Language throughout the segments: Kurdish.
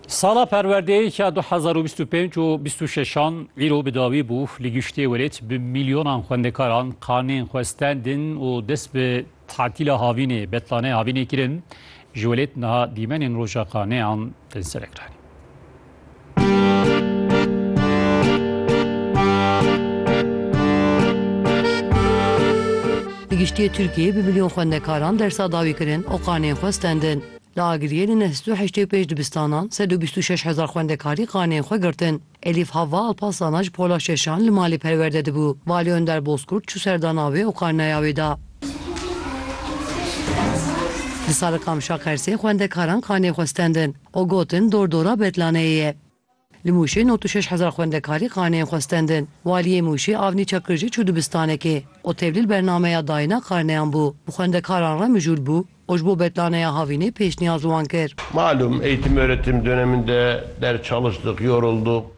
Sala perwerdeyê ya du hezar û bîst û pênc û bîst û şeşan îro bi dawî bû. Li giştê welêt bi mîlyonan xwendekaran karnên xwe stendin û dest bi tatîla havînê, betlaneyê havînê kirin. Ji welêt niha dîmenên roja karneyan tên serekiranîn. Di giştiyê Tirkiyeyê bi milyon xwendekaran dersa dawî kirin û qanên xwe stendin. Li Agiriyê li neh sed û heştê û pênc dibistanan sed û bîst û şeş hezar xwendekarî qanên xwe girtin. Elîf Havva Alparslan a ji Pola Şeşan li malê perwerde dibû. Valî Önder Bozkurt çû ser dana wê û karneya wê da. Li Sarıkamşa Qersê xwendekaran qanê xwe stendin. û gotin dordora Betlaneyê ye. Li Mûşê nod û şeş hezar xwendekarî karneyên xwe stendin. Waliyê Mûşê Avnî Çakir jî çû dibistanekê û tevlîl bernameya dayîna karneyan bû. Bi xwendekaran re mijûl bû û ji bo Betlaneya Havînê pêşniyaz wan kir. Malum eğitim öğretim döneminde ders çalıştık, yoruldık.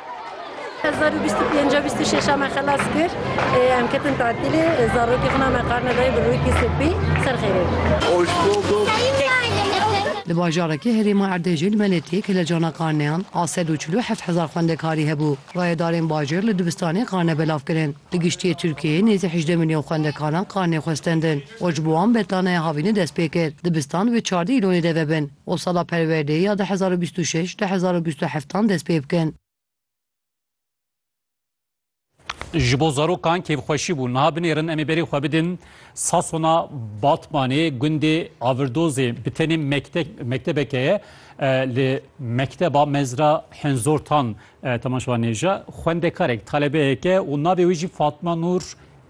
Hezar û bîst û pênc e bîst û şeş e me xelas kir. Em ketin tatilê. Zarokê xwe na me karne dayê bi rûyekî sopî. Ser xêrê. Hoş bulduk. Li bajarekî herêma Erdêjê li Meletiyê ke li cana karneyan a sed û çil û heft hezar xwendekarî hebû, rayedarên bajêr li dibistanê karne belav kirin. Li giştiyê Tirkiyeyê nêzî hejdeh milyon xwendekaran karnê xwe stendin û ji bo wan betlanaya havînê dest pê kir dibistan wê çardeh îlonê de vebin. û sala perwerdeyê ya du hezar û bîst û şeş du hezar û bîst û heftan dest pê bikin. Ji bo zarokan kêfxweşî bû. Niha binêrin em ê berê xwe bidin Sasona Batmanê gundê Avirdozê. Bi tenê mektebeke ye li mekteba mezra Hinzortan temaşewa nêja. Xwendekarek, talebeyeke û navê wê jî Fatma Nur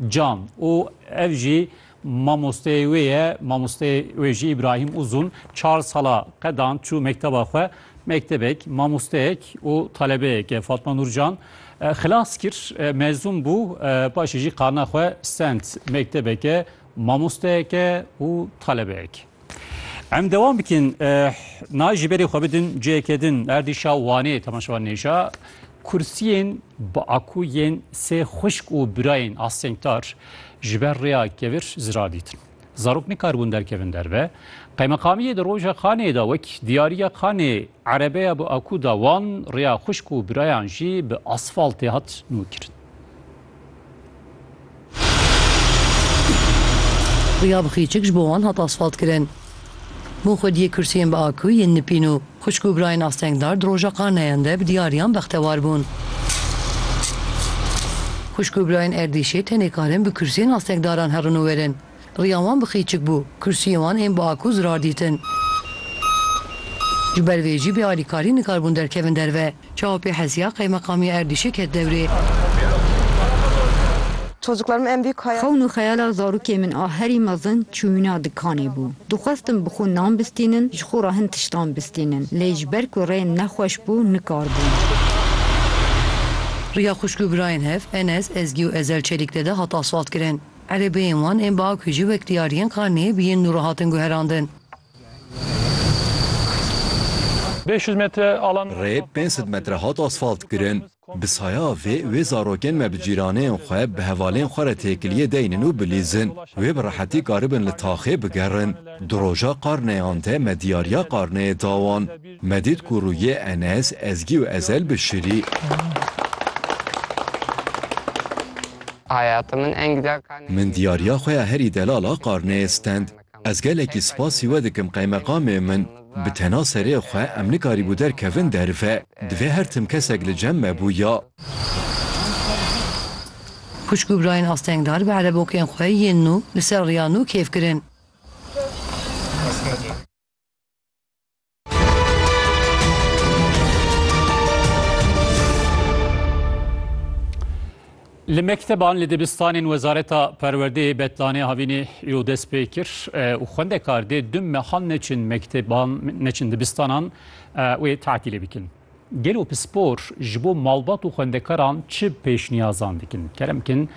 Can û ev jî Mamosteyê wê ye, mamosteyê wê jî Îbrahîm Uzun çar sala qedan çû mekteba xwe. Mektebek, mamosteyek û talebeyek e. Fatma Nurcan xilas kir, mezûn bû, paşê jî karna xwe stend. Mektebek e, mamosteyek e û talebeyek. Em dewam bikin nayê ji berê xwe bidin cihekê din erdîşa Wanê temaşevan nêja kursiyên bi aku yên sê xwişk û birayên astengtar ji ber rêya kevir zirar dîtin. Zarok nikaribûn derkevin derve. Qeymeqamiyê di roja Xanê de wek diyariya Xanê erebeya bi aku da wan rêya xwişk û birayan jî bi asfaltê hat nûkirin. Riya bi xîçik ji bo wan hat asfaltkirin. Bo xwediyê kursiyên bi aku yên nipîn û xwişk û birayên astengdar di roja qarneyan de bi diyariyan bextewar bûn. Xwişk û birayên Erdîşê tenê karin bi kursiyên astengdaran herin û werin. Riya wan bi qîçik bû, kursiyên wan ên bi akû zirar dîtin. Ji ber vê jî bê alîkarî nikarbûn derkevin derve. Çawa pê hesiya Qeymeqamiya Erdîşê ket dewrê. Xewn û xeyala zarokê min a herî mezin çûyîna dikanê bû. Dixwestin bi xwe nan bistînin, ji xwe re hin tiştan bistînin. Lê ji ber ku rê nexweş bû nikarbûn. Riya xwişk û birayên hev Enes, Ezgî û Ezel Çelîkdede hat asfaltkirin. Erebeyên wan ên biaku ji wekdiyariyên xaneyê biyên nû re hatin guherandin. Rê pênc sed metre hat asfaltkirin. Bi saya vê wê zarokên me bi cîraneyên xwe, bi hevalên xwe re têkiliyê deynin û bilîzin. Wê bi rehetî karibin li taxê bigerin. Di roja qarneyan de me diyariya qarneyê da wan. Me dît ku rûyê Enes, Ezgî û Ezel bişirî. Min diyariya xwe ya herî delal a qarneyê stend. Ez gelekî spasî we dikim qeymeqamê min. Bi tena serê xwe em nikarîbû derkevin derve. Divê her tim kesek li cem me bû ya. Xwişk û birayên astengdar bi erebokên xwe yên nû li ser riya nû kêf kirin. Li mekteban li dibistanên Wezareta Perwerdeyê Betlanê havînê yo dest pê kir û xwendekar dê du mehan neçin mekteban neçin dibistanan wê tatîlê bikin. Gelo pispor ji bo malbat û xwendekaran çi pêşniyazan dikin? Kerem kin